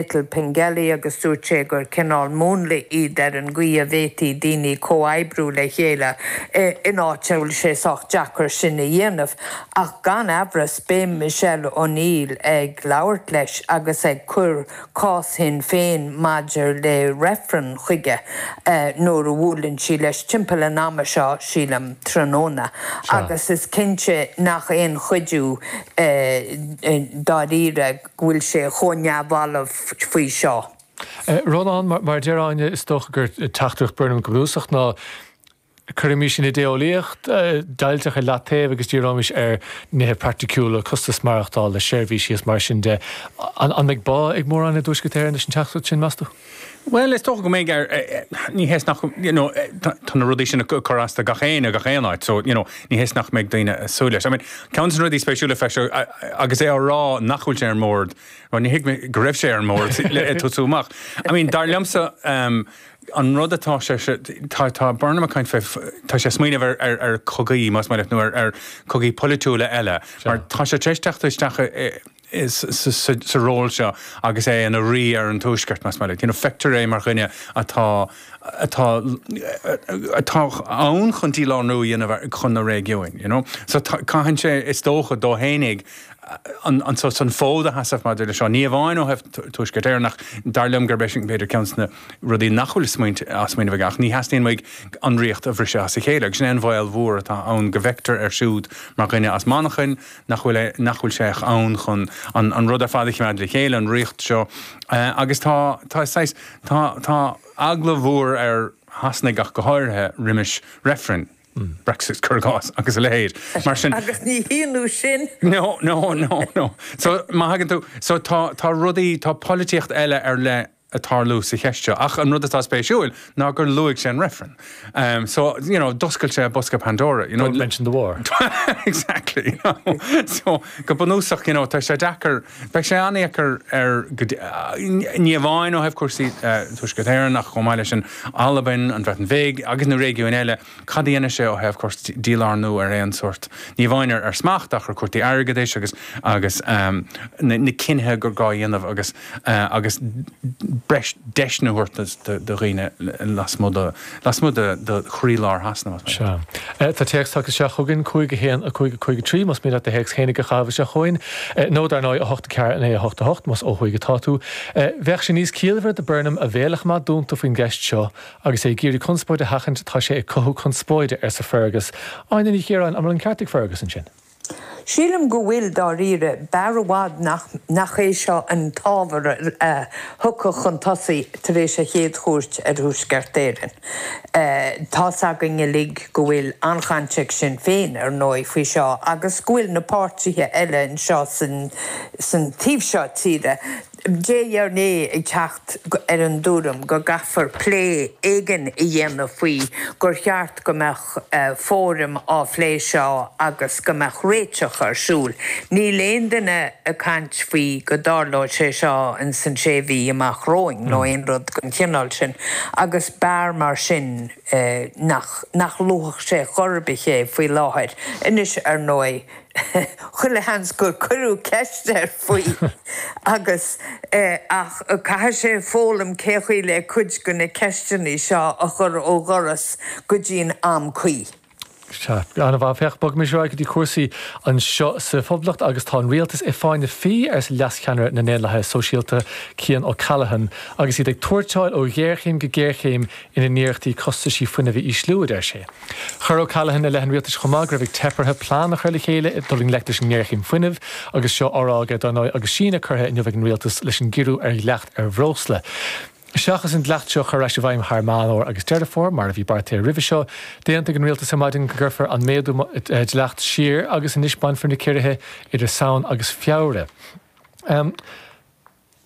Little Pengelly agus dúirt sé gur cineál múnla iad ar an gcaoi a bhféadfaí daoine comhoibriú le chéile in áit a bhfuil sé sách deacair sin a dhéanamh. Ach gan amhras, beidh Michelle O'Neill ag labhairt leis agus ag cur cás Shinn Féin maidir le reifreann chuige nuair a bhuaileann sí leis timpeall an ama seo, sílim, tráthnóna. Agus is cinnte nach aon chuidiú dáiríre. go bhfuil sé chomh neamhbhalbh faoi seo. Rónán, mar a deir Áine, is dócha gur teachtaireacht Burnham go bunúsach ná, cuirfimís an idé-eolaíocht deighilteach ar leataobh agus díreoimís ar nithe praiticiúla, costas maireachtála, seirbhísí is mar sin de. An mbeidh bá ag mórán i dTuaisceart Éireann leis an teachtaireacht sin, meas tú? Bhuel, is dócha go mbeidh, ní hé is nach, you know, tá na rudaí sin ag cur as do gach éinne, gach aon áit, so, you know, ní hé is nach mbeidh daoine ag súil leis. I mean, ceann des na rudaí spéisiúla a feiceadh agus é á rá nach bhfuil sé ar an mbord, bhuel, níor thuig mé go raibh sé ar an mbord le tosú amach. I mean, dar liomsa, an rud atá sé, tá Burnham ag caint fé, tá sé ag smaoineamh ar chogaí, más maith leat, nó ar chogaí polaitiúla eile, mar tá sé tar éis teacht isteach i, sa ról seo agus é ina rí ar an Tuaisceart, más maith leat. Feictear é mar dhuine atá, atá ann chun dílárnú a dhéanamh chun na réigiúin. you know, so caitheann sé, is dócha, dó fhéinig an fód a sheasamh maidir leis seo, ní amháin ó thaobh Tuaisceart Éireann ach dar liom gurb é sin, b'fhéidir, ceann des na rudaí nach bhfuil á smaoineamh aige, ach ní theastaíonn uaidh an ríocht a bhriseadh as a chéile agus sin é an bhaol mhór atá ann go bhfeictear air siúd mar dhuine as Manchain, nach bhfuil, nach bhfuil sé ach ann chun an, an rud ar fad a choimeád le chéile, an ríocht seo. Agus tá, tá saghas, tá, tá eagla mhór ar Shasanaigh ach go háirithe roimis reifrinn, Brexit cur i gcás, agus a leithéid. Mar sin. Agus ní hionadh sin. No, no, no, no. So, má thagann tú, so tá, tá rudaí, tá polaitíocht eile ar leith ag tarlú sa cheist seo. Ach an rud atá spéisiúil ná gur luaigh sé an reifreann. So, you know, d'oscail sé bosca Pandora. Don't mention the war. Exactly. So, go bunúsach, you know, tá sé deacair, beidh sé an-dheacair ar, ní amháin ó thaobh cúrsaí Tuaisceart Éireann ach chomh maith leis an Albain, an Bhreatain Bheag agus na réigiúin eile. cad a dhéanfaidh sé ó thaobh tabhairt dílárnú ar aon sórt, ní amháin ar smacht ach ar chúrsaí airgeadais agus agus na cinnithe gur gá a dhéanamh agus agus breis deiseanna a thabhairt do dhaoine lasmuigh de lasmuigh de de chroílár Shasana, más maith leat. Sea. Tá téacs tagtha isteach chugainn, 5 1 5 5 3, más maith leat do théacs fhéinig a chaitheamh isteach chugainn, nó, dar ndóigh, 8 4 9 8 8, más ó thuaidh atá tú. Bheadh sé níos ciallmhaire do Burnham a bhéal a choimeád dúnta faoin gceist seo Agus é ag iarraidh conspóid a sheachaint, 'Tá sé ag cothú conspóide, arsa Fergus. Áine Ní Chiaráin, An bhfuil an ceart ag Fergus ansin? Sílim go bhfuil, dáiríre. B'fhearr i bhfad nach é seo an t-ábhar a thiocfadh chun tosaigh tar éis a chéad chuairt ar Thuaisceart Éireann. Tá's againn uilig go bhfuil an-chaint ag Sinn Féin, ar ndóigh, faoi seo agus go bhfuil na páirtithe eile anseo san taobh seo tíre, de réir a chéile ag teacht ar an dtuairim go gcaithfear plé éigin a dhéanamh faoi, gur cheart go mbeadh fóraim á phlé seo agus go mbeadh réiteach ar siúl. Níl aon duine ag caint faoi go dtarlódh sé seo in san sé mhí amach romhainn nó aon rud den chineál sin agus b'fhearr mar sin nach luafadh sé chor ar bith é faoi láthair. Anois, ar ndóigh, Chuile sheans gur cuireadh ceist air faoi agus ach caithfidh sé foghlaim cé chaoi le cuid de na ceisteanna seo a chur ó dhoras go dtí'n am cuí. Sea. An-mhaith. Féach, bogaimis ar aghaidh go dtí cúrsaí anseo sa Phoblacht agus tá an rialtas i bhfáinne fí, arsa leascheannaire na nDaonlathaithe Sóisialta, Cian O'Callaghan, agus iad ag tuairteáil ó ghéarchéim go géarchéim ina n-iarrachtaí costaisí fuinnimh a ísliú, a deir sé. Chuir O'Callaghan i leith an rialtais chomh maith go raibh ag teip orthu plean a chur le chéile dul i ngleic leis an ngéarchéim fuinnimh agus seo á rá aige, dár ndóigh, agus síneadh curtha inniu ag an rialtas leis an gciorrú ar dhleacht ar bhreosla. Seachas an dleacht seo a chur ar ais i bhfeidhm thar Meán Fhómhair agus Deireadh Fómhair, mar a bhí beartaithe roimhe seo, d'aontaigh an rialtas ar maidin go gcuirfear an méadú dleacht siar agus anois bainfear na ciorruithe idir Samhain agus Feabhra.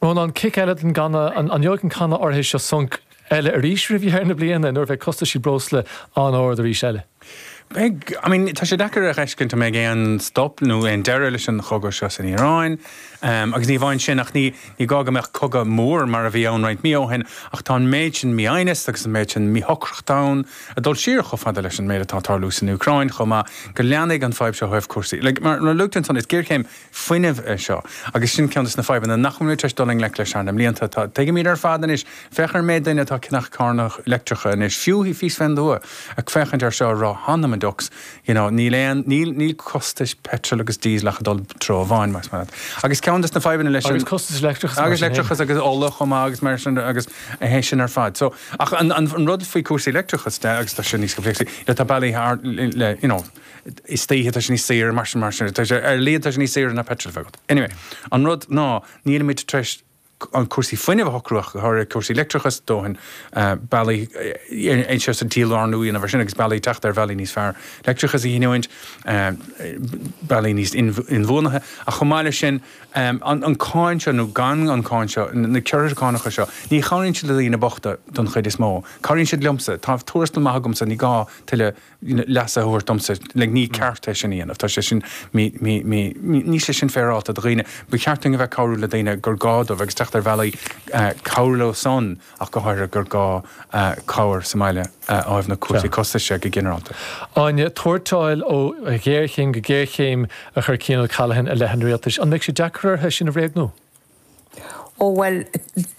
Rónán, Cic eile den channa, an ngeobhaidh an canna áirithe seo sonc eile arís roimh dheireadh na bliana nuair a bheidh costaisí breosla an-ard arís eile? Beidh, I mean tá sé deacair a dh'fheiscint an mbeidh aon stop nó aon deireadh leis an chogadh seo san Iaráin agus ní amháin sin ach ní gá go mbeadh cogadh mór mar a bhí ann roinnt mí ó shin ach tá an méid sin mí-shuaimhneas agus an méid sin míshocracht ann ag dul siar chomh fada leis an méid atá ag tarlú san Úcráin chomh maith go leanfaidh an fhadhb seo ó thaobh cúrsaí like mar a luaigh tú ansan is géarchéim fuinnimh é seo. Agus sin ceann de na fadhbanna nach bhfuil muid tar éis dul i ngleic leis thar na mblianta. Tá, tuigimid ar fad anois, féach ar an méid duine atá ag ceannach carranna leictreacha anois, fiú thíos fén dtuath, ag féachaint ar seo a rá, hanam an diucs, you know, níl aon, níl, níl costais peitril agus díosal ach ag dul i dtreo amháin, más maith leat. Agus ceann de na fadhbanna leis an. Agus costas leictreachas mar Agus sin féin. leictreachas agus ola chomh maith agus mar sin de agus a théis sin ar fad. So, ach an, an, an rud faoi cúrsaí leictreachas de, agus tá seo níos comhléacsai, le tá bealaí thar, le, you know, istoíche tá sé níos saoire mar sin mar sin tá sé ar líne tá sé níos saoire ná peitreal a bheith agat. Anyway, an rud ná nílimid tar éis an cúrsaí fuinnimh a shocrú ach go háirithe cúrsaí leictreachais dóthain, bealaí anseo sa tír lárnú a dhéanamh air sin agus bealaí teacht ar bhealaí níos fearr leictreachas a ghiniúint, bealaí níos inbhuanaithe ach chomh maith leis sin an cáin seo nó gan an cáin seo, na ciorruithe cánacha seo, ní chabhraíonn siad le daoine bochta don chuid is mó. Cabhraíonn siad liomsa. Tá tuarastal maith agamsa, ní gá tuilleadh leas a thabhairt domsa, like ní ceart é sin a dhéanamh, tá sé sin mí, mí, mí, mí, níl sé sin féaráilte do dhaoine, ba cheart dúinn a bheith cabhrú le daoine gur gá dóibh agus teacht ar bhealaí cabhrú leo san ach go háirithe gur gá cabhair sa mbaile a fháil na cúrsaí costais de go ginearálta. Áine, tuairteáil ó ghéarchéim go géarchéim a chuir Cian O'Callaghan i leith an rialtais, an mbeidh sé deacair orthu é sin a bhréagnú? Ó bhuel,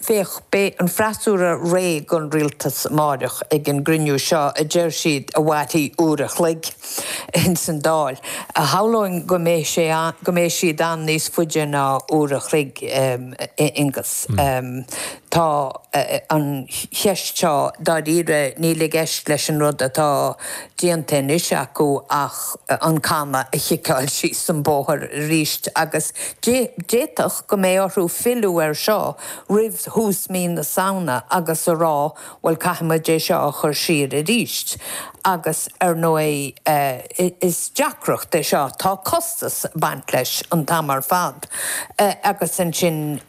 féach, beidh an freasúra réidh don rialtas amáireach ag an gcruinniú seo a deir siad a mhairfidh uair a chloig ins an Dáil. Shamhlóinn go mbeidh sé, go mbeidh siad ann níos faide ná uair a chloig, a Aonghus. Tá an cheist seo, dáiríre, níl i gceist leis an rud atá déanta anois acu ach, an canna a chiceáil síos an bóthar arís agus d'fhéadfadh go mbeidh orthu filleadh air seo roimh thús mhí na Samhna agus a rá 'bhuel caithfidh muid é seo a chur siar arís' agus ar ndóigh is deacracht é seo, tá costas ag baint leis an t-am ar fad agus ansin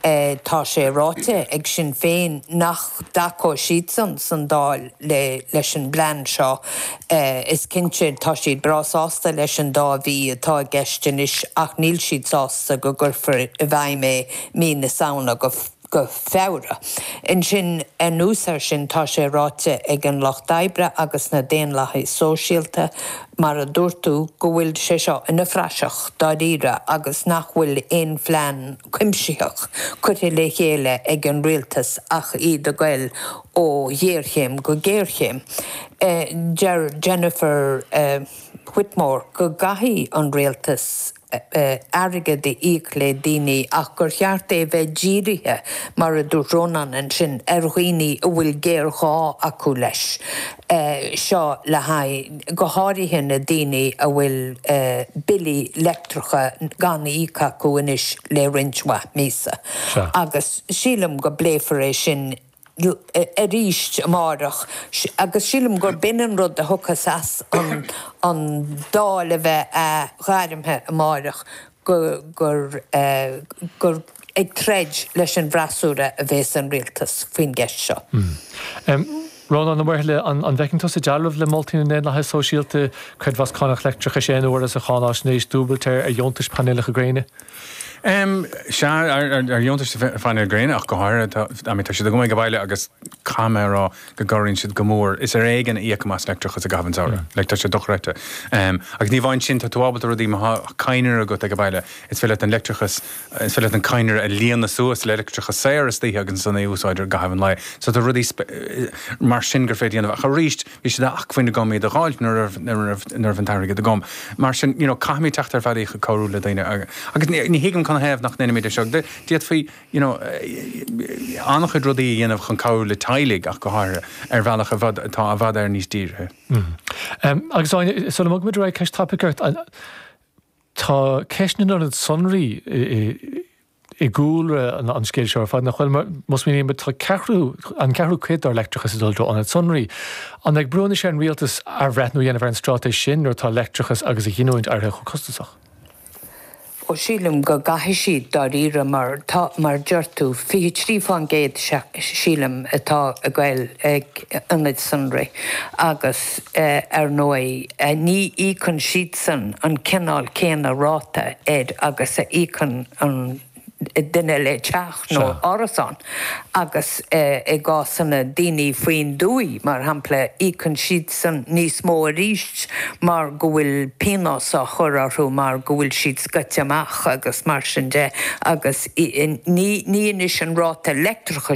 tá sé ráite ag Sinn Féin nach dtacóidh siadsan sa Dáil leis an bplean seo. Is cinnte, tá siad breá sásta leis an dá mhí atá i gceist anois ach níl siad sásta go gcuirfear i bhfeidhm é mí na Samhna go Feabhra. Ansin, anuas air sin, tá sé ráite ag an Lucht Oibre agus na Daonlathaigh Sóisialta, mar a dúirt tú, go bhfuil sé seo ina phraiseach, dáiríre, agus nach bhfuil aon phlean cuimsitheach curtha le chéile ag an Rialtas ach iad ag goil ó ghéarchéim go géarchéim. Deir Jennifer Whitmore go gcaithfidh an rialtas airgead a íoc le daoine ach gur cheart é a bheith dírithe, mar a dúirt Rónán ansin, ar dhaoine a bhfuil géarghá acu leis. Seo le haghaidh go háirithe na daoine a bhfuil billí leictreacha gan íoc acu anois le roinnt mhaith míosa. Agus sílim go bpléifear é sin arís amáireach agus sílim gur b'in an rud a thiocfas as an Dáil a bheith athghairmthe amáireach gur, gur ag troid leis an bhfreasúra a bhéas an Rialtas faoin gceist seo. Rónán Ó Muirthile, An bhfeiceann tusa dealramh le moltaí na nDaonlathaithe Sóisialta, creidmheas cánach leictreachais aon uaire sa Cháináisnéis dúbailt ar dheontais painéalacha gréine? Sea, ar dheontais do phainéil ghréine ach go háirithe, tá, I mean, tá siad agam ag baile agus caithfidh mé a rá go gcabhraíonn siad go mór, is ar éigean a íocaim as leictreachas i gcaitheamh an tsamhraidh, like, tá siad dochreidte. Agus ní amháin sin, tá tú ábalta rudaí, má thá cadhnra agat ag baile, is féidir leat an leictreachas, is féidir leat an cadhnra a líonadh suas le leictreachas saor istoíche agus ansan é a úsáid i gcaitheamh an lae. So tá rudaí mar sin gur féidir a dhéanamh ach aríst, bhí sé d'acmhainn agam iad a dh'fháilt nuair a raibh an t-airgead agam. Mar sin, you know, caithfimid teacht ar bhealaí chun cabhrú le daoine agus ní thuigim canathaobh nach ndeinimid é seo. D'fhéadfaí, you know, an-chuid rudaí a dhéanamh chun cabhrú le teaghlaigh ach go háirithe, ar bhealach i bhfad, atá i bhfad Éireann níos dírithe. Mh. Agus, Áine, sula mbogfaimid ar aghaidh, ceist tapaidh ort, tá ceist na n-ionad sonraí i, i gcúlra an scéil seo ar fad, nach bhfuil? Más mian linn an ceathrú cuid dár leictreachas a dhul i dtreo ionaid sonraí, an mbeidh brú anois ar an rialtas athbhreithniú a dhéanamh ar an straitéis sin nuair atá leictreachas agus a ghiniúint éirithe chomh costasach? Ó sílim go gcaithfidh siad, dáiríre, mar tá, mar deir tú, 23 fán gcéad, sílim, atá ag gabháil ag ionaid sonraí agus. Ar ndóigh, ní íocann siadsan an cineál céanna ráta air agus a íocann an duine le teach nó árasán agus i gcásanna daoine faoin dtuaith, mar shampla, íocann siadsan níos mó arís mar go bhfuil pionós á chur orthu mar go bhfuil siad scoite amach agus mar sin de agus ní anois an ráta leictreachais